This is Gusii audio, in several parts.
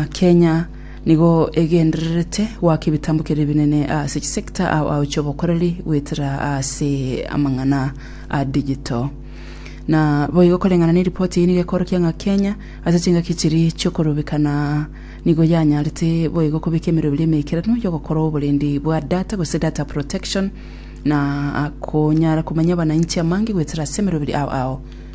Kenya nigo egendererete goaka ebitambo keria ebinene ase chisector ao ao chiobokoreri goetera ase amang'ana a digital. Na boigo koreng'ana ne ripoti eyio nigo ekorokia ng'a Kenya ase chingaki chiri chiokorubekana nigo yanyarete boigo kobeka emerero ebiria emeikeranu yogokora oborendi bwa data gose data protection na konyara komanyia abanainchi amange goetera ase emerero ebiria ao ao.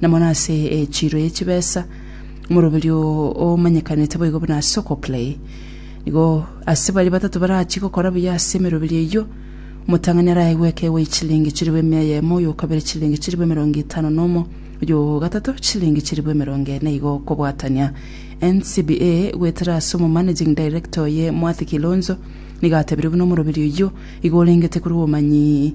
na mono ase echiro ye chibesa, omoroberio omanyekanete boigo buna ase okoklei. Igo ase baria batato barachie gokora buya ase emeroberio eyio, omotang'ani arae gweka ewe chilingi chilifu emia eyemo, oyo okabere chilingi chilifu emerongo etano na omo, oyo o gatato chilingi chilifu emerongo ene, igo kobwatania. NCBA goetera ase omomanaging director oye Mwathi Kilonzo, nigo atebirie buna omoroberio oyio igo orengete korwa obomanyi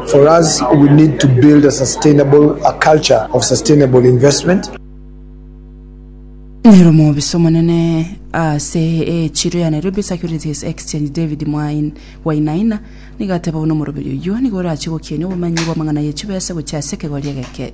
Nere omobisa omonene ase echiro ya Nairobi Securities Exchange David Wainaina nigo ateba buna omoroberi oyio nigo orachie gokienia obomenyi bw'amang'ana ye chibesa gochia ase ekegori egeke.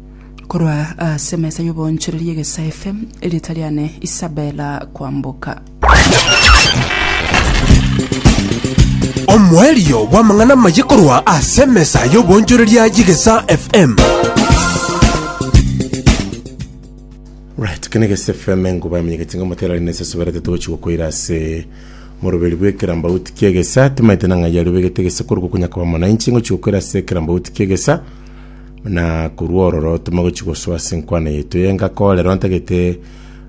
Korwa ase emesa y'oboonchoreria egesaife, erieta riane Isabela kwamboka. Omoerio bw'amang'ana amaye korwa ase emesa y'oboonchoreria y'egesa FM. Right, kene gese FM enguba emenyekete ng'a motera rine sese berete tochi gokoira ase moroberi bw'ekerambauti kiegesa timaete na ng'ai ario begete gese korugo konya koba mwananchi ngochi gokoira ase ekerambauti kiegesa Na korwa ororo timogochia gosoa ase enkwano yaito y'enka, ko rero ntagete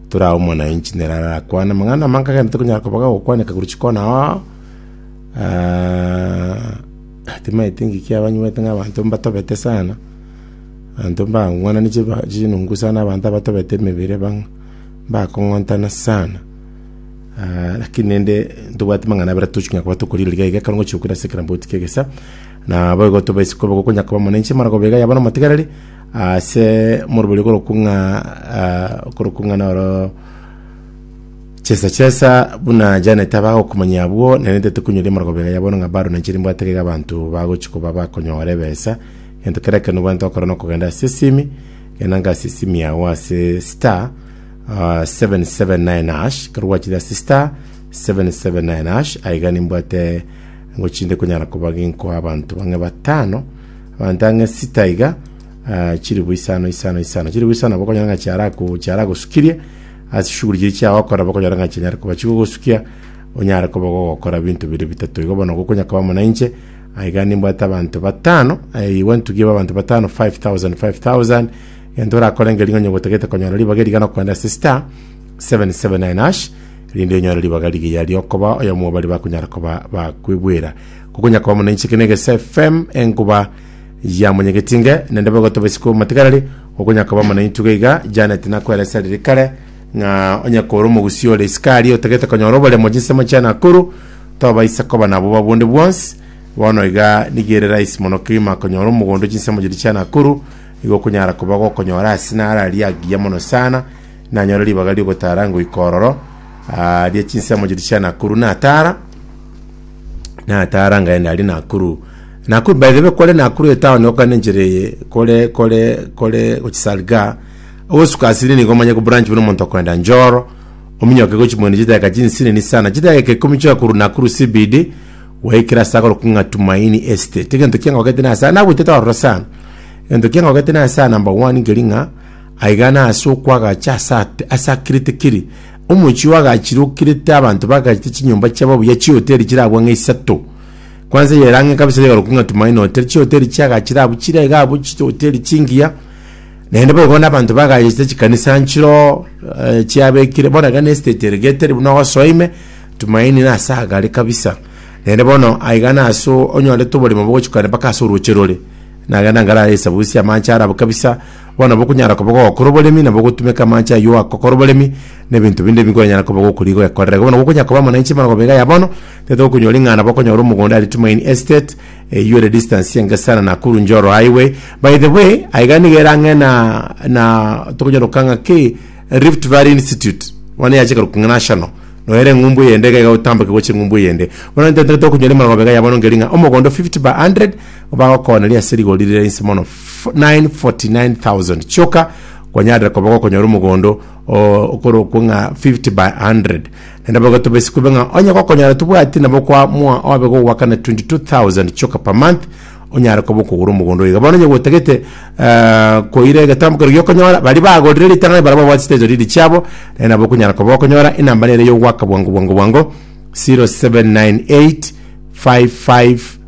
torae omonanchi nere arakwane amang'ana amange agende tokonyara koba gagokwaneka korwa chikono oo. Ah, timaeti engaki abanywete ng'a abanto mbatobete sana, abanto mbang'wanani chiba- chinungu sana abanto abatobete emebere bang'e, mbakong'ontana sana. Ah, lakini naende ntobwati mang'ana abere tochi konya koba tokorigereria iga, ekero ngochia gokina ase ekerambauti ki'egesa. Naboigo tobaisa koba gokonya koba monenche emaragobio iga yaba nomotigareri ase morobori okorokung'a ah, okorokung'a noro chesa chesa buna Janet aba agokomanya abwo nerente tokonyoria emaragobio iga yabo ng'a baro nenche rimbwate iga abanto bagochi koba bakonyora ebesa gento kera ekero nobwanete gokora nokogenda ase esimi enanga ase esimi yago ase star ah, 779 hash ekero gwachire ase star 779 hash aiga nimbwate Ngochinde konyara koba ginkoa abanto bang'e batano, abanto ang'e sita iga, ah, chilifu isano isano isano. Chilifu isano nabo okonyora ng'a chiarako chiaragosukirie ase chishughuli chiria chiao okora nabo okonyora ng'a chinyare koba chigogosukia onyare koba gogokora ebinto biria bitato igo bono gokonya koba muna inche aiga nimbwate abanto batano eh, igwa ntugi ebe abanto batano 5000 5000 gento orakore ngeri ng'a onye gotagete konyora ribaga eriga nokogenda ase star 779 hash rinde onyore ribaga rigiya riokoba oyomo bari bakonyara koba bakwibwera kokonyakoba muna inche kene gese fm enkuba yamonyegetinge nende begotoba isiko matigarari okonyakoba muna intuga iga janet nakweresa riri kare ng'a onyakore omogusi ore isikari otegete konyora oboremo jinsemo chia nakuru tobaisa koba nabo babunde bwonsi bono iga nigere rahisi mono kegima konyora omogondo chinsemo chiria chia nakuru igo okonyara koba gokonyora ase nara riagiya mono sana Nanyore ribaga ri'ogotara ngoika ororo, ah, rie chinsemo chiria chia Nakuru, natara, natara ngaenda aria Nakuru. Nakuru, by the way, kore Nakuru etown okane enchera eye, kore, kore, kore gochi Salgaa, ogosuka asiri nigo omanye kobranch buna omonto okoenda Njoro, ominyoke gochi Mweni chidakika chinsinini sana, chidakika eke ikomi chioka korwa Nakuru CBD, gwaikire ase agorokwa ng'a Tumaini Estate. Egento kiangogete nase, nabuetete ororo sana. Egento kiangogete nase aa, number one, nkeri ng'a, Aiga nase okwagacha ase ate ase akirete kere, omochie oyo agachire okirete abanto bagachete chinyomba chiabo buya chihoteri chire abwo ng'a isato. Kwanza eyere ang'e kabisa yorokwa ng'a Tumaini Hotel, chihoteri chiagachire abwo chire iga abwo chihoteri chingiya, naende boigo na abanto bagachete chikanisa nchiroo eh, chiabekire bono iga na estate eregetere buna ogosoa ime, Tumaini nase agare kabisa. Naende bono aiga nase onyorete oboremo bogochikana mpaka ase orooche rore, nagenda nkarara esabusia amache arabo kabisa, Bono nabo okonyara koba gogokora oboremi, nabo ogotumeka amache ayio agokora oboremi, na ebinto binde ebi nkoranyare koba gokorigia goekorera. Bono nabo okonyara koba omwananchi bono goba iga ya bono, tete okonyora ing'ana nabo okonyora omogondo aria Tumaini Estate, eyio ere distance enge sana Nakuru Njoro Highway. By the way, aye iga nigo ere ang'e na na tokonyora goka ng'a ki Rift Valley Institute, bono nigo yachaka korokwa ng'a National, noyo ere eng'umbu eyende iga iga gotamboka gochia eng'umbu eyende. Bono intwe totokonyora emeremo iga ya bono nkeri ng'a omogondo 50 by 100, bagokoneria ase rigori rire inse mono. 949,000 chioka kwanyarire koba gokonyora omogondo okorokwo ng'a 50 by 100 naende boigo tobesi kube ng'a onye gokonyora tobwati nabo kwa mwa obe gogwakana 22000 chioka per month onyare koba okogora omogondo oiga bono onye gwotagete eh, koira egetambo kero giokonyora bari bagorire ritang'ani barabo babwate chiteto riri chiabo naende nabo okonyara koba okonyora enamba nere yogwaka bwango bwango bwango 0798 55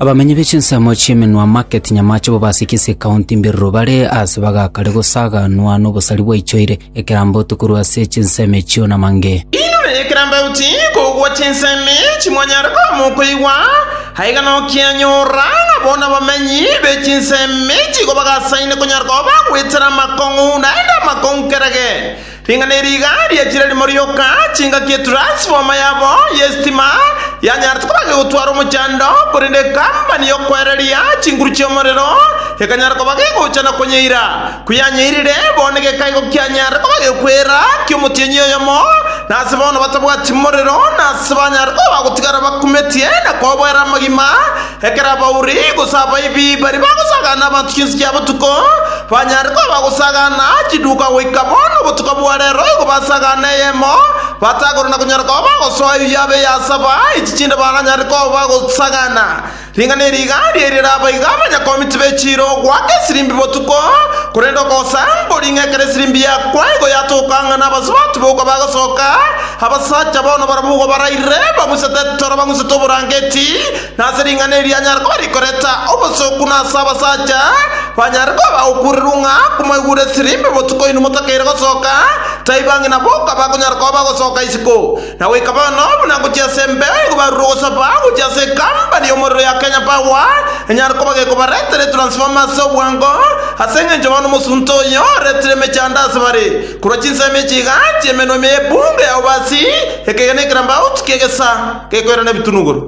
Abamenyi be chinsemo chi'Emenwa Market, Nyamache, Bobasiki, Sikaunti, Mbiriro bare aase bagakare gosaganwa nobosari bwaichoire ekerambe oti korwa ase chinsemo echio na mange. Inwe ekerambe oti kogwa chinsemo echi mwanyare koama okoigwa, aiga nokianyora ng'a bono abamenyi be chinsemo echi igo bagasaine konyara koba bagwetera amakong'u naende amakong'u kerage. Ring'ana eri iga riachire rimo rioka, chingaki ya turansifoma yabo y'esitima yanyaarete kobaka gotwara omochando, korende ekambani y'okoereria chinguru chi'omorero ekanyara kobaka egocha na konyeira. Koyanyeirire, bono gekae igo kianyarire kobaka ekwera ki'omotienyi oyomo, na ase bono batabwati morero, na ase banyare koba bagotigara bakumetie na koboera amagima, Ekero abauri, gose abaibi, baria bagosagaana abanto chinswe chia botuko, banyare koba bagosagaana chiduuka goika bono obotuko bwa reero, igo basagaane eyemo, batagorwe na konyara koba bagosoa eyio yaaba eyasaba, echi chinde baranyare koba bagosagaana. Ring'ana eri iga riairire abaiga abanyakomiti be chiira ogoaka esirimbi botuko, korende okogosa mbori ng'a ekero esirimbi yakwa igo yatoka ng'a n'abasubati boka bagosoka, abasacha bono barabwo igo baraire bang'usete etoro bang'usete oborangeti, na ase ring'ana eri anyare koba rikoreta obosooku, na ase abasacha banyare koba bagokuurerwa ng'a komoigure esiri mbe botuko inwe motakeire gosoka, taiba ng'ina boka bakonyara koba bagosoka isiko na goika bono buna ngochia ase embe igo barure ogosaba gochia ase ekampani y'omorero ya Kenya Power enyare koba gekobaretera etransformer ase obwango ase engencho bono omosunte oyo oretire emechando ase bare korwa chinsemo echiga chi'emenwa ime y'ebunge ya obasi ekegena ekerambaoti ki'egesa gekoirana ebitunuguru.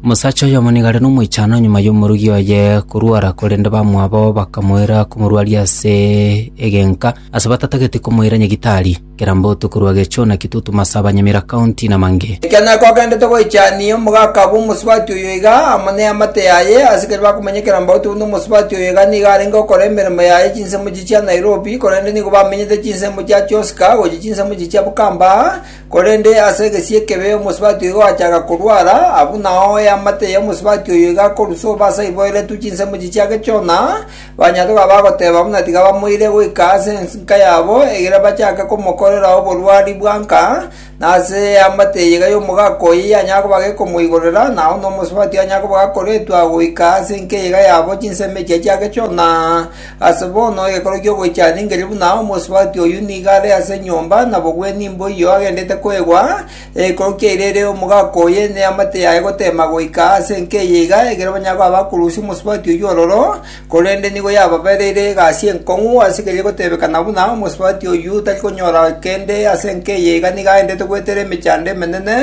Omosacha oyomonigare nomoichano nyuma y'omorugi oye korwora, korende bamwabo bakamoira komorwaria ase egenka, ase batatageti komoira nyagitari. Kerambotu korwa Gechuna, Kitutu, Masaba, Nyamira County na mangĩ. Ekero kwagendete goichania omogaka bwa omosubati oyo iga amo neamate yaye, asikari bakomenya Kerambotu buna omosubati oyo iga nigo arenge okora emeremo yaye chinsemo chiria. chia Nairobi, korende nigo bamenyete chinsemo chia Choska gochia chinsemo echi chia Bukamba, korende ase egesie ekebe omosubati oyo ogachaka korwara, abwo nao eamate ya omosubati oyo igakorwa sobo ase aiboeretwe chinsemo echi chia Gechona, banyatora bagoteba buna tiga bamoire goika ase enka yabo, egere bachake komokorera oborwari bwa nka, Na ase eamate eye iga y'omogaka oye yanyara koba gekomoigorera, na onde omosubati yanyara koba gakoretwa goika ase enka eye iga yabo chinsemo echio chiagechona. Ase bono egekoro ki'ogoichana engeri buna omosubati oyio nigo are ase enyomba, na bogwenie mboyio agendete koegwa, egekoro kia ira ere omogaka oye neamate yaye goteema goika ase enka eye iga, ekero banyare koba bakorusia omosubati oyio ororo, Korende nigo yababereire egasi enkong'u ase keria gotebeka na buna omosubati oyio otari konyora kende ase enka eye iga nigo aendete goetera emechando emenene,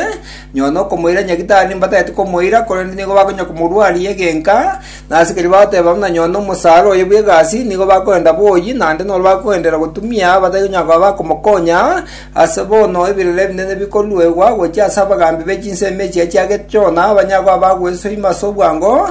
nyuma nokomoira nyagitari mbatagete komoira, korende nigo bakonya komorwaria egenka, na ase keria bagoteba buna nyuma nomosara oye bw'egasi, nigo bakoenda boyi, naende noro bakoendera gotumia batari konyara koba bakomokonya, ase bono ebirore ebinene bikoruegwa gochia ase abagaambi be chinsemo echi achiagete Jona, banyare koba bagwesoima ase obwango,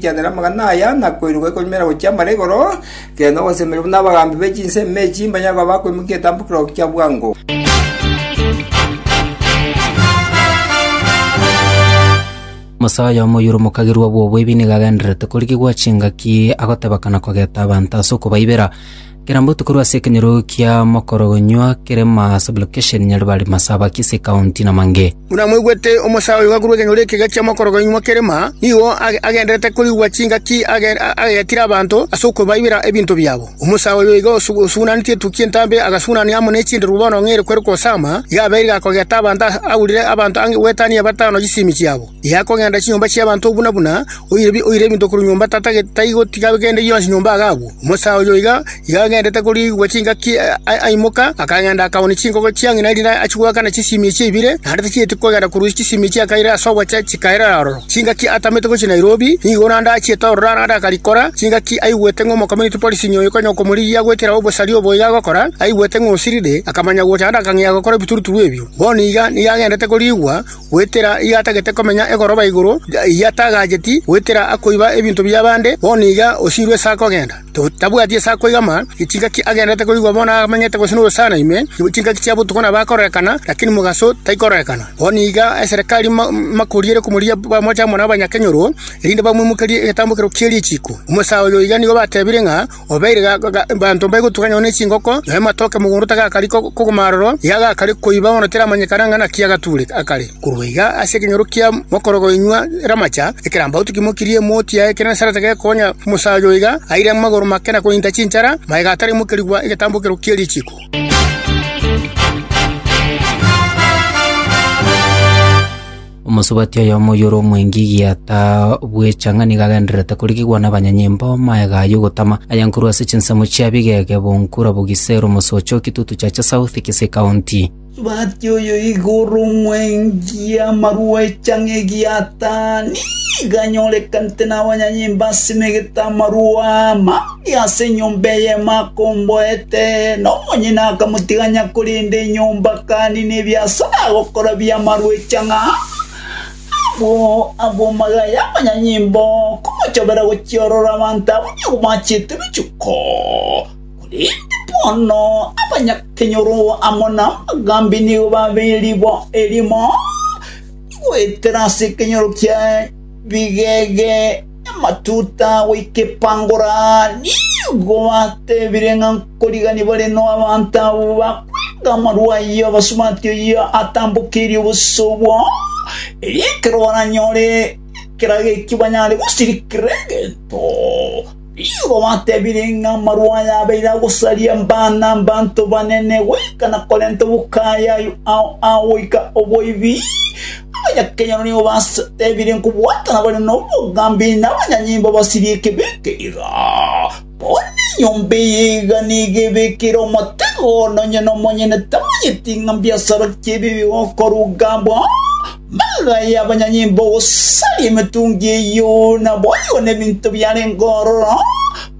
Chianda namagana aya nakoiruka ekonyumera gochia amara igoro, kere nogosemeria buna abagaambi be chinsemo echi mbanyare koba bakoimokia etambukero kia bwango. Omosae oyomo oyore omokagirwa bw'oboibi nigo agendererete korigigwa chingaki agotebakana kogeta abanto ase okobaibera. Kera mbotukorwa ase ekenyoro kia mokorogonywa kerema sublocation Nyaribari Masaba Kisii County na Mange. Buna mwaigwete omosae oyo gakorwa ekenyoro eke gachia mokorogonywa kerema, nigo agendererete korigwa chingaki agetire abanto ase okobaibera ebinto biabo. Omosae oyo iga osugunanitie etukia entambe agasugunania amo ne chinderu bono ng'eire kwere kosama, iga abeire gakogeta abanto aurire abanto ang'e goetania batano chisimi chiabo. Eakogenda chinyomba chi'abanto buna buna, oire ebinto korwa nyomba taigotiga kende gionsi nyomba iga agwo. Omosae oyo iga agendete koriigwa chingaki aimoka, akagenda akaoonia chinkoko chia ng'ina erinde achigwekane chisimie echi ibere, naende tachieti kogenda korwa chisimie chiakaire ase obochie chikairera aroro. Chingaki atamete gochia Nairobi, nigo naende achiete ororo naende akarikora, chingaki aigwete ng'a omokomyuniti policing oyo konya okomorigia goetera obosari obo iga agokora, aigwete ng'a osirire, akamanya gocha naende akang'ea gokora ebituruturu ebio. Bono iga nigo agendete koriigwa. goetera iga atagete komenya egoroba igoro eyio atagacheti goetera akoiba ebinto bi'abande, bono iga osiirwe ase akogenda. Tabwati ase akoigama, chingaki agendererete koigwa bono amenyete gose nogosaana ime, chingaki chia botuko nabo akororekana, lakini mogaso taikororekana. Bono iga eserekari mbakoriere komoria bamoche amo nabanya-kenyoro, erinde bamoimokerie egetambokero kie richiiko. Omosaa oyo iga nigo batebire ng'a, Obeire baanto mbaigotugana nyuma ne chingoko, na amatoke mogondo tagakari kogoma aroro, iga agakare koiba bono teramanyekana ng'a naki agature akare. Korwa iga ase ekenyoro kia mokorogo inywa ramacha, ekerambato kimokirie emoti yaye ekenene sana tegekonya omosacha oyo iga aire amagoro make na kointa chinchara, magega atarimokerigwa egetambokero kie richiko. Omosubati oyomo oyore omwengi gieta bwecha ng'a nigo agendererete korigigwa nabanyanyimbo magega aya ogotama, aye nkorwa ase chinsemo chia bigege, Bonkura, Bogisero, Mosocho, Kitutu, Chacha South, Kisii County. Omosubati oyo igo ore omwengi amarwecha ng'a gieta nigo anyorekanete nabanyanyimbo ase emegete amarwa ama. Ase enyomba eyemo akomboete, na omonyene akamotiganya korenda enyomba akani nebiasara agokora bi'amarwecha ng'a abwo abwo magaya amanyanyimbo komochobera gochiorora abanto abwo nigo bachiete richuko. Korende bono abanyakenyoro amo namagambi nigo babe eribo erimo, nigoetera ase ekenyoro ki'ebigege. Amatuta goika epangora nigo batebire ng'a nkorigani bare no abanto abo bakwenga amarwa ayio abasubati oyio atambokeirie obosa obwo, erio ekero baranyore ekerago ekio banyare gosirikera egento. Nigo batebire ng'a amarwa aya abeire agosaria bana abanto banene goika na korenta obokaya ao goika oboibi, Abanyakenyoro nigo basetebire nkobwatana bare nobogambi na abanyanyimbo basirie ekebi eke iga. Bono enyomba eye iga nigo ebekire omotego ono onye nomonyene tamanyeti ng'a mbiasara ki ebi bigokoruga bwa magaya y'abanyanyimbo gosaria emetungi eyio naboigo nebinto biarenge ororo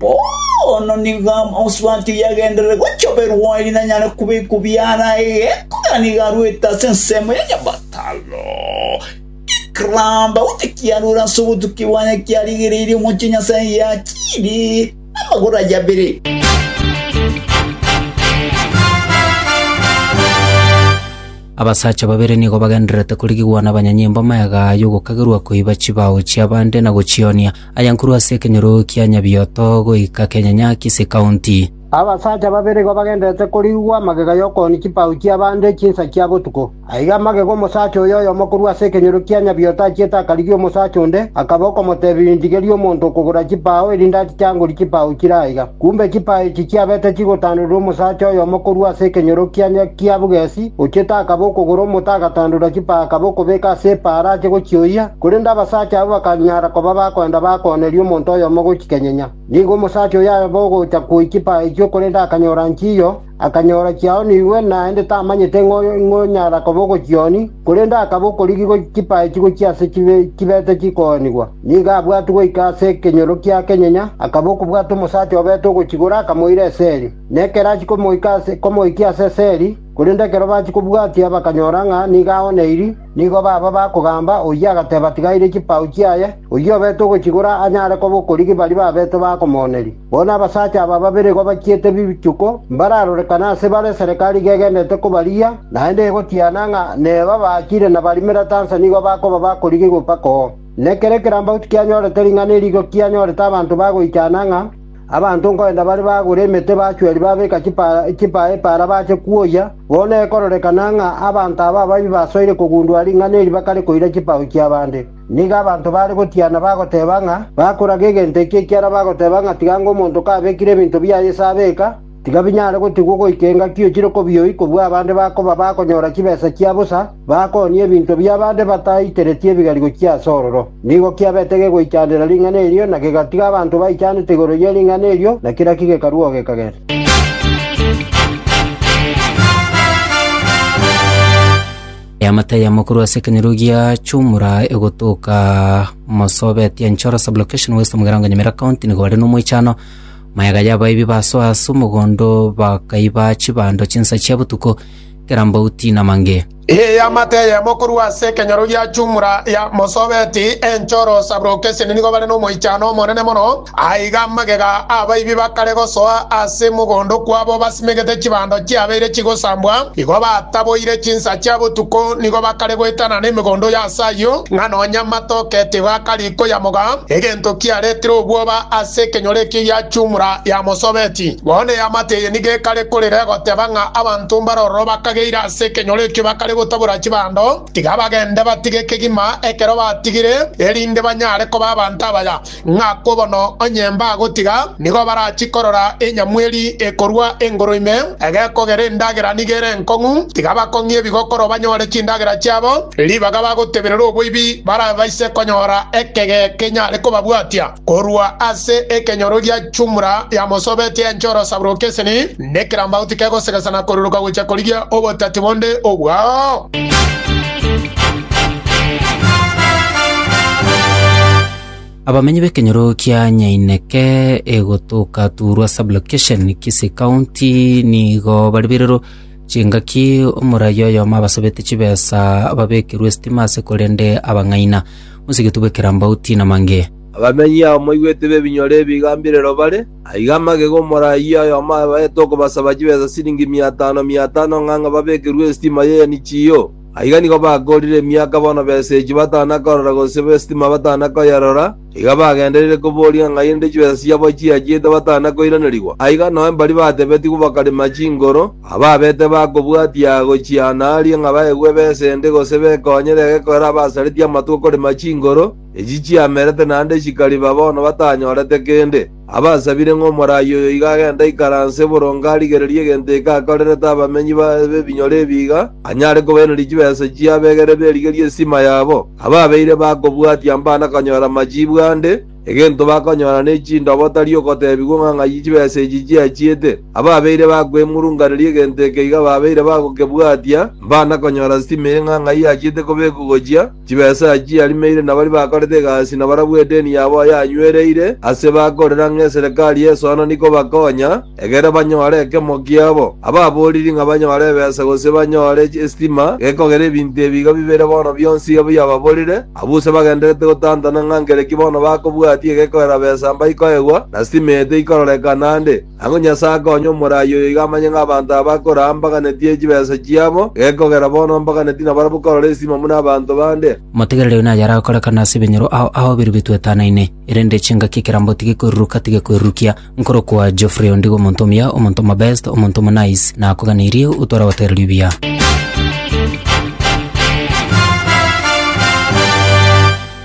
Bono nigo amaoswaki yagenderere gochoberwa ere nanyare kobekwa biara egeko gani garwete ase ensemo ya nyabataro. Ekeramba gose kiarure ase obotukia bwane kiarigereirie omochie Nyasae giachiiri namagoro aye abere. Abasacha babere nigo bagendererete korigigwa nabanyanyimbo magega y'ogokagerwa koiba chibao chi'abande na gochionia. Ayankuru ase ekenyoro kia Nyabioto goika kenyanya Kisii County. Abasacha babere igo bagenderete korigwa magega y'okooni chipau chi'abande chinsa chia botuko. Aiga amagega omosacha oyo oyomo korwa ase ekenyoro kia Nyabioto achiete akarigia omosacha onde, akaba okomoteebia, Indigeria omonto okogora chipau, erinde achiche angorie chipau chire aiga. Kumbe chipaa echi chiabete chigotandererwa omosacha oyomo korwa ase ekenyorokiania kia bogesi, ochiete akaba okogora omote agatandora chipaa akaba okobeka ase epaa arache gochioyia, korende abasacha abwo bakanyara koba bakoenda bakooneria omonto oyomo gochikenyinya. Nigo omosacha oyo abe ogocha koyia chipaa echio korende akanyora nchiyo, Akanyora chiaonigwe, naende tamanyete ng'a onyara koba ogochioni, korende akaba okorigigwa chipae chigochia ase chibete chikoonigwa. Nigo abwatwe goika ase ekenyoro kia kenyenya, akaba okobwata omosacha obete ogochigora, akamoira esegi. Na ekero achia komoikia ase esegi, korende ekero bachia kobwatia bakanyora ng'a nigo aoneiri, Nigo baba bakogamba oyio agateba atigaire chipao chiaye, oyio obete ogochigora anyare koba okorigi baria babete bakomooneria. Bono abasacha aba babere igo bachiete bichuko mbararorekane ase bare eserekari iga egendete kobarigia, naende egotiana ng'a neba baachire na barimera tansa nigo bakoba bakorigi goka koo. Nekero ekerambagu tikianyorete ring'ana eri igo kianyorete abanto bagoichana ng'a Abanto nkoenda bare bagore emete bachweri babeka chipaa epaara bache kwoyia, bono ekororekana ng'a abanto aba ababii basoire kogundua ring'ana eri bakare koira chipao chi'abande. Nigo abanto baare gotiana bagoteeba ng'a bakoraga egento eki ekiara bagoteba ng'a tiga ng'a omonto kabekire ebinto biaye ase abeka, Tigabinyare gotigwa goika engaki ochire kobioi kobua abande bakoba bakonyora chibesa chia bosa, bakoonie ebinto bi'abande bataiteretie ebigarigo chia ase ororo. Nigo kiabete gegoichandera ring'ana erio, na kegatiga abanto baichanete igoro ye ring'ana erio, na kera ki gekarua ogekagera. Eamate ya mokuru ase ekenyoro giachumura egotoka Mosobeti Enchoro sublocation West Mugirango Nyamira County nigo are nomoichano Maega y'abaebi basoa ase omogondo, bakaiba chibando chinsa chia botuko, kera mbauti namange. Eamate eyemo korwa ase ekenyoro gia chumura ya mosobeti, enchoro saburoka esende nigo bare nomoichano omonene mono. Aiga magega abaibi bakare gosoa ase mogondo kwabo basimegete chibando chiabeire chigosambwa, igo bataboire chinsa chia botuko, nigo bakare goetana nemegondo y'ase ayio, ng'a nonya amato ketigo akarigwa. koyamoga, egento kiaretire obwoba ase ekenyoro ekio yachumura yamosobeti. Bono eamateye nigo ekare korera egoteba ng'a abanto mbare ororo bakageire ase ekenyoro ekio bakare gotabora chibando, tiga bagende batige kegima ekero batigire, erinde banyare koba abanto abaya, ng'a kobono onye mbagotiga, Nigo barachie korora enyamweri ekorua engoro ime, egekogera endagera nigo ere enkong'u, tiga bakong'ie ebigokoro banyore chindagera chiabo, ribaga bagoteberera oboibi barabaise konyora ekege kenyare kobabwatia korua ase ekenyoro gia chumura ya mosobetie enche orosaburo okeseni, nekerambauti kegosegesa na koruruka gochia korigia obotati bonde obwao. Abamenyi b'ekenyoro kia Nyaineke egotoka Turwa Sublocation, Kisii County, nigo baribirirwe chingaki omoraia oyomo abasabete chibesa babekerwe esitima ase korende abang'aina. Mosegetwe bwe Kerambau Tina Mange. Abamenyi abo moigwete b'ebinyoro ebi igambirero bare, aiga amagega omoraia oyomo abaete okobasaba chibesa siringi mia tano, mia tano, ng'a ng'a babekerwe esitima y'Enichiyo. Aiga nigo bakoorire emiaka bono b'esegi batana korora gose b'esitima batana koyerora, iga bagendereire kobooria ng'a naende chibesa chiabo chiachiete batana koiranerigwa. Aiga nao mbari batebetigwe bakarema chingoro, ababete bakobwatia gochiana aaria ng'a baegwe ebesa ende gose bekonyere egekoero abasaretie amatuko korema chingoro, echi chiamerete naende chikariba bono batanyorete kende. Abasabire ng'a omoraai oyo iga agende aikaranse boronge arigererie egento eke akorerete abamenyi b'ebinyore ebi iga anyare kobairaneria chibesa chia abegere berigerie esisima yabo, ababeire bakobwatia mbana konyora machiibu ande, egento bakonyora ne chindoba otari ogotebigwa ng'a ng'ai chibesa echi chiachiete. Ababeire bakwemurunganeria egento eke iga babeire bagokebwatia mbana konyora sisima eye ng'a ng'ai yachiete kobekwa gochia, Chibesa echi arimeire nabaria bakorete egasi na barabwo edeni yabo yanywereire ase bakorera ng'a eserekari y'esoano nikobakonya, egere banyore ekemo kiabo. Ababoriri ng'a banyore ebesa gose banyore esitima gekogera ebinto ebi iga bibere bono bionsi iga biababorire, abwo use bagendererete gotantana ng'a nkere ki bono bakobwatia egekogera besa mbaikoegwa, na sitima eye teikororekana ande. Ang'o Nyasae akonye omoraai oyo iga amanye ng'a abanto aba bakora mbaganetie chibesa chiabo, gekogera bono mbaganetie nabarabwo korora esimo buna abanto bande? Motegerere oyo naye aragokorekana ase ebinyoro ao ahoberwe bituetanaine, erende chingaki ekerambo tigekweruruka tigekwerurukia. Nkorokwa Geoffrey ondigo omonto omuya, omonto omobest, omonto omonaice. Nakoganeirie otware goteererwa ebiya.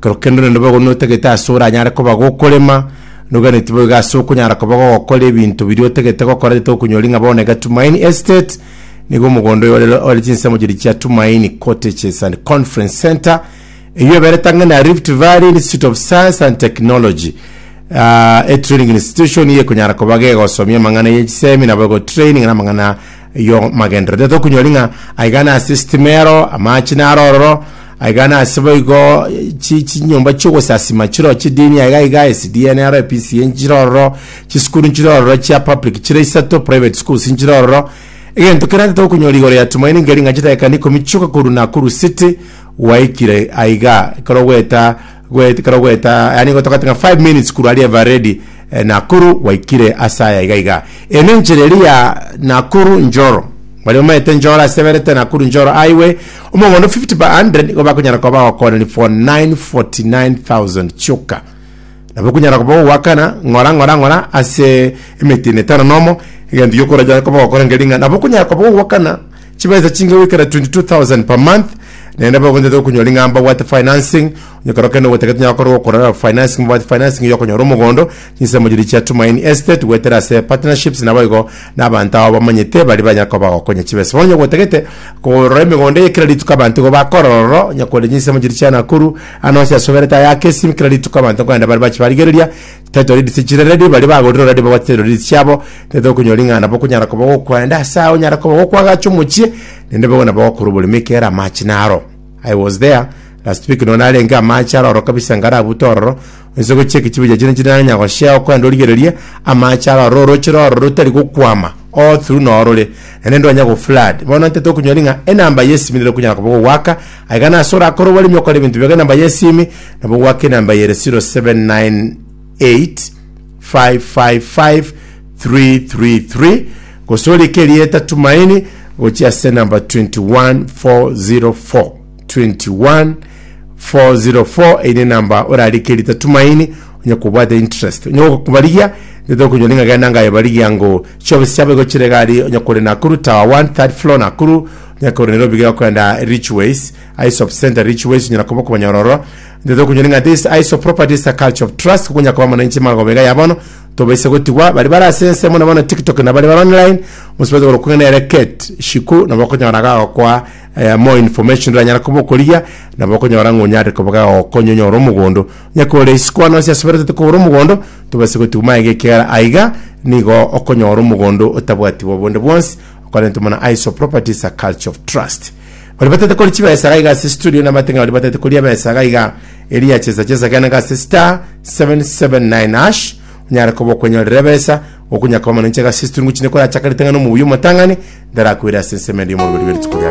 Kero kende onde nobe ogo notagete ase oranyare koba gokorema, noganeti boigo ase okonyara koba gogokora ebinto biria otagete gokora rete okonyora ing'a bono iga Tumaini Estate nigo omogondo oyo ore ore chinsemo chiria chia Tumaini Cottages and Conference Centre eyio eberete ang'e na Rift Valley Institute of Science and Technology ah, a training institution eyio ekonyara koba gegosomia amang'ana ye chisemi naboigo training na amang'ana Eyio magenderero tete okunyori ng'a aigane ase sitimero, amache naro ororo, aigane ase boigo chi- chinyomba chi'ogosasima chiro chidini aiga aiga, esidnr, PCA nchire ororo, chisukuru nchire ororo chia public chire isato, private schools nchire ororo. Egento kerende tete okunyori igoro ya Tumaini ngeri ng'a chidakika ikomi chioka korwa Nakuru City gwaikire aiga ekero ogweta Goet- kero goeta yaani gotoka tika 5 minutes kuru aria eva ready eh, nakuru gwaikire ase aya iga iga eno enchera eri ya nakuru njoro bari bamaete njoro aseberete nakuru njoro highway omogondo 50 by 100 nigo bakonyara koba bagokooneri for 949000 chioka nabo okunyara koba ogoakana ng'ora ng'ora ng'ora ase emetino etano nomo egento giokoraja koba ogokora ngering'a nabo okunyara koba ogoakana chibaisa chinga goikera 22,000 per month, naende nabo bagontete okonyora ring'ana mbabwate financing, onye korokende ogotake tonyara gokorerwa okorora financing mbabwate financing ya okonyora omogondo, chinsemo chiria chia Tumaini Estate goetera ase partnerships naboigo na abanto abo bamanyete baria banyare koba bagokonya chibesa. Bono onye ogotagete korora emegondo eye kera rituko abanto igo bakorora ororo, onye korende chinsemo chiria chia Nakuru, ande onsi asoberete ayake esimi kera rituko abanto nkogenda bare bache barigereria, Title deeds echi redi baria bagorire already babwate title deeds chiabo tete okonyora ring'ana nabo okonyara koba gokwenda ase ao onyara koba gokwagacha omochie naende bobe nabo gokorwa oborimo ekiagera amache naro I was there last week nonye narenge amache aroro kabisa ngarabute ororo onsi gochia ekechibi giaye chire chirarenya goshea okwenda origererie amache aroro oroche roro rotari gokwama all through norore naende ndwanya go flood bono ntete okonyora ng'a enamba yesimi nero okonyara koba gogoaka aiga nase orakore oboremi okore ebinto biago enamba yesimi Nabo goaka enamba eye ere 0798555333 gose orike erieta Tumaini gochia ase enamba 21404 21404 eye nenamba orarike erieta Tumaini onye kobwate interest onye gokobarigia nete okonyora ng'a genda ngaye barigia ngo chiofisi chiabo igo chire gari onye kore Nakuru tower 1 third floor Nakuru onye kore Nairobi iga okogenda Richways Ice of Center Rich Ways onyara koba okobanyororo ororo ntete okonyora ng'a this ice of property is a culture of trust kuko onyara koba mono inche magoba iga ya bono tobaisa gotigwa bari bare ase ense mono mono tiktok na bari bare online bonsi batigwe korokwa ng'a nere Kate shiku nabo okonyora gagokoa eh, more information oranyara koba okorigia nabo okonyora ng'a onyare koba gagokonya onyore omogondo onyare kogora isiko ande onsi asubere ntete kogora omogondo tobaisa gotigwa maega ekiagera aiga nigo okonyora omogondo otabwatiwe obonde bwonsi okorenta mono ice of property is a culture of trust Ori batete kori chibesa iga iga ase studio nabate ng'a ori batete kori ebesa iga iga eria chesa chesa gena iga ase star 779 hash onyare koba okwenyorera ebesa gokunya koba manonche iga ase studio ngochine kore achakarete ng'a nomobuya omotang'ani ndarakoire ase ensemo ende y'omorugori bw'erituko riaye